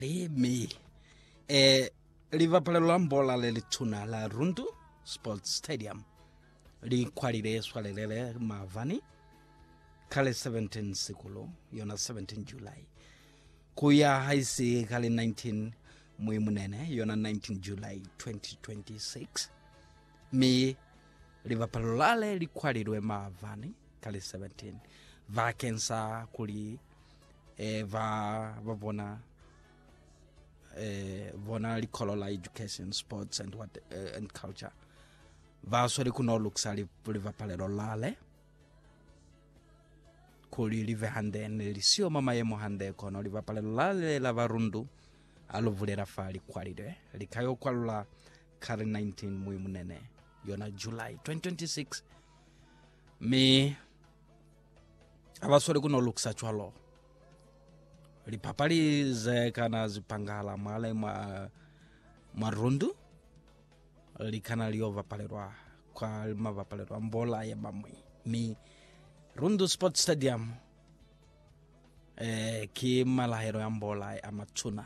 Emi e libapalelo la mbola le lituna la Rundu Sports Stadium li kwalile swalelele mavani kale 17 sikulu yona 17 July kuya haisi kale 19 Muimunene yona 19 July 2026 mi libapalelo lale li kwalilwe mavani kale 17 bakeng sa kuli eh, va va bona eh, bona likholo la education sports and what eh, and culture va sweli ku no lukisa li- livapalelo lale kuli live hande ne li siyo ma mayemo hande kono livapalelo lale la varundu a lu vulela fa likwalile likayo kwalula kari 19 mui munene yona july 2026 mi ha ba sweli ku no lukisa cwalo. Lipapali ze kana zipangahala mwale mwa, mwa rundu li kana li yo bapalelwa kwa mabapalelo a mbola ya bamwi. Mi Rundu Sport Stadium eh, ki malahelo ya mbola a matuna.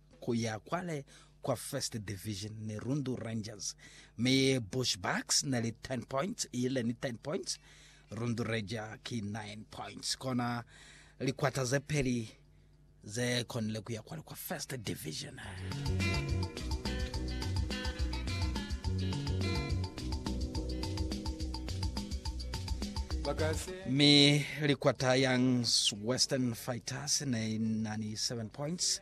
ku ya kwale kwa First Division ni Rundu Rangers, mi Bushbucks ne li 10 points, ile ni 10 points, Rundu Ranger ki 9 points. Kona likwata ze peli ze konile ku ya kwale kwa First Division. Mi likwata Youngs Western Fighters ne nani 7 points.